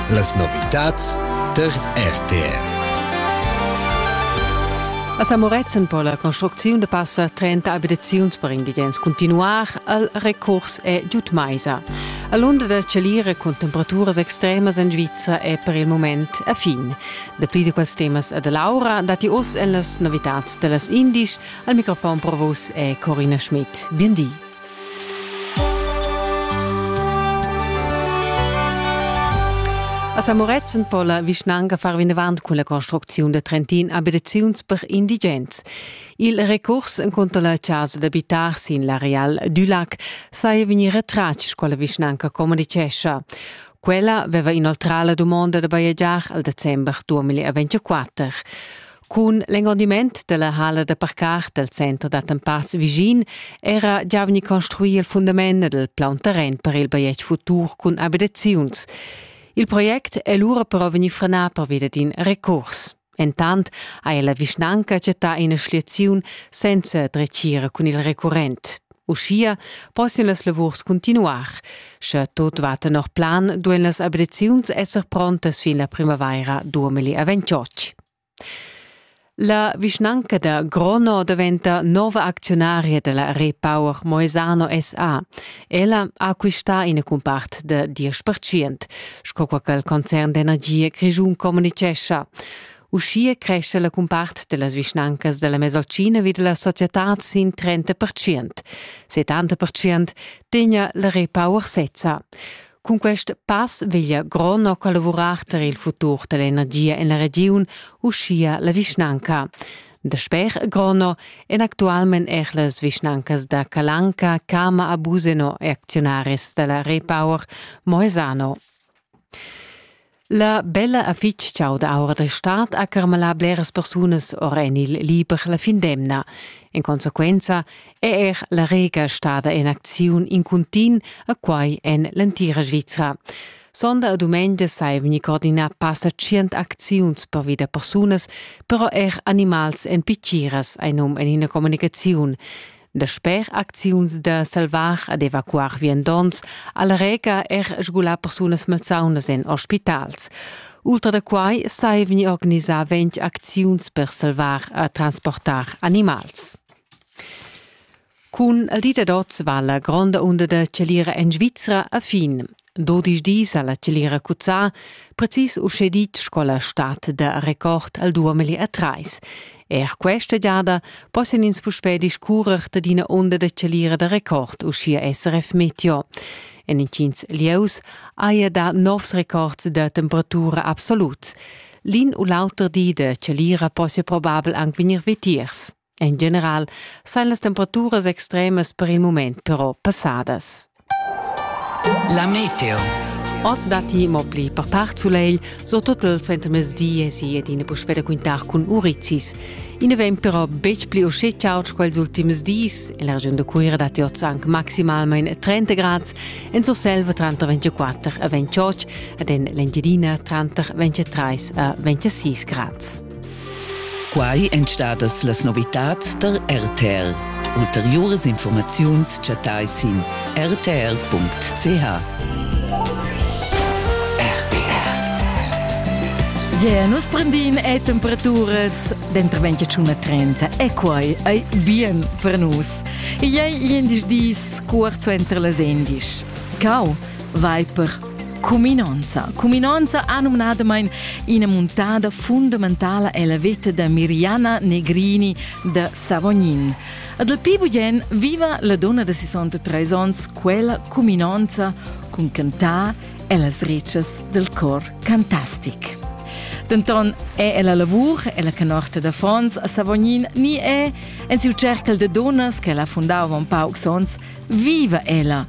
Las novitads tar RTR. A Samorezen po la construcziun da passa 30 abitaziuns per indigens continuar al recurs è giud maisa. A l'unda da Chalira cun temperaturas extremas en Svizzera è per il moment a fin. Dapli di quels temas a Laura dati oz en las novitads da las indisch. Al microfon provos è Corina Schmidt. Bien di. A Samorezen po la vischnanca far vinavant cun la construcziun da Trentin abitaziuns per indigens. Il recurs encunter la chasa d'abitar sin l'areal Dulac saja vegnì retratg quella vischnanca communitgescha. Quella veva inoltrà la dumonda da bajegiar al december 2024. Cun l'engondiment della hala da parcar del center d'attempads vischin era già vegni construir il fundament del plaun terren per il bajetg futur cun abitaziuns. Il project è lura però vegni frenà pervia d'in recurs. Entant ha la vischnanca chattà ina schliaziun senza dretgira cun il recurrent. Uschia possian las lavurs continuar. Sche tot va tenor plan, duen las abitaziuns esser prontas fin la primavaira 2028. La vischnanca da Grono daventa nova acziunaria dalla Repower Moesano SA. Ella ha acquistà ina cumpart da 10%, sco quai ch'il concern d'energia grischun communitgescha. Uschia crescha la cumpart dallas vischnancas dalla Mesolcina vi dalla societad sin 30%. 70% tegna la Repower sezza. Cun quest pass veglia Grono collavurar tar il futur da l'energia en la regiun, uschia la vischnanca. Dasper Grono èn actualmain er las vischnancas da Calanca, Cama a Buseno e acziunaris da la Repower Moesano. La bella ha fitg chaud aura da stad ha carmalà bleras persunas or en il liber la fin d'emna. En consequenza è er la Rega stada en acziun in cuntin a quai en l'entira Svizra. Sonda e dumengia sai vegnir coordinà passa tschient acziuns per vida persunas, però er animals en pitgiras, hai num en ina communicaziun. Dasper acziuns da salvar ed evacuar viandonts al reca er sgulà persunas malsaunas en ospitals. Ultra da quai sai vegnir organisà ventg acziuns per salvar e transportar animals. Cun il dit ad oz va la gronda unda da chalira en Svizra a fin. Dodisch dis ha la celira cuzzà, precis uschè ditg sco la stad da record al 2003. Er questa giada possian ins puspè discurrer dad ina onda da celira da record, uschia SRF Meteo. En intgins lieus haja dà novs records da temperatura absoluts. L'in u l'auter di da celira possia probabel anc vegnir vitiers. En general sajan las temperaturas extremas per il mument però passadas. La meteo. Oz datti mo pli per part sulegl, surtut il suentermezdi èsi ed ina puspè da quintar cun urizis. I na vegn però betg pli uschè chaud sco ils ultims dis. En la regiun da Cuira datti oz anche maximalmain 30 grad, en Surselva tranter 24 e 28 ed en l'Engiadina tranter 23 e 26 grad. Quai èn stadas las novitads tar RTR. Ulteriuras informaziuns chattai sin rtr.ch. Ge, nus prendin e temperaturas dentro 21 a 30 e quai ei bien per nus. Ei ei endisch dis cuort suenter las endisch. Cau vai per Cuminonza. Cuminonza ha numnadamain ina muntada fundamentala ella veta da Miriana Negrini da Savognin. Ad el pi bugen viva la donna de 63 onns quella cuminonza cun cantar ellas ricas del cor cantastic. Denton è ella lavur, ella canorta da Fons a Savognin ni è, en siu cercal de donnas che ella fundava un pauc sons, viva ella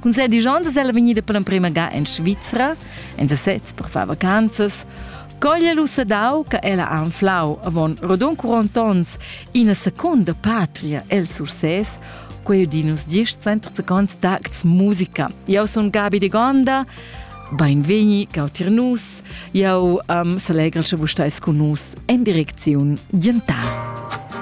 Cun ses disch onns ella vegnida per l'emprima ga en Svizra, en sesez per far vacanzas, coglia lu sedau che ella ha anflau avon rodon 40 onns ina seconda patria el Sursès, quei din nus diesch center second d'acts musica. Eu sun Gabi de Gonda, Beinvegni, cau tir nus, jau um, salegra sche vus stais cun nus en direcziun dientà.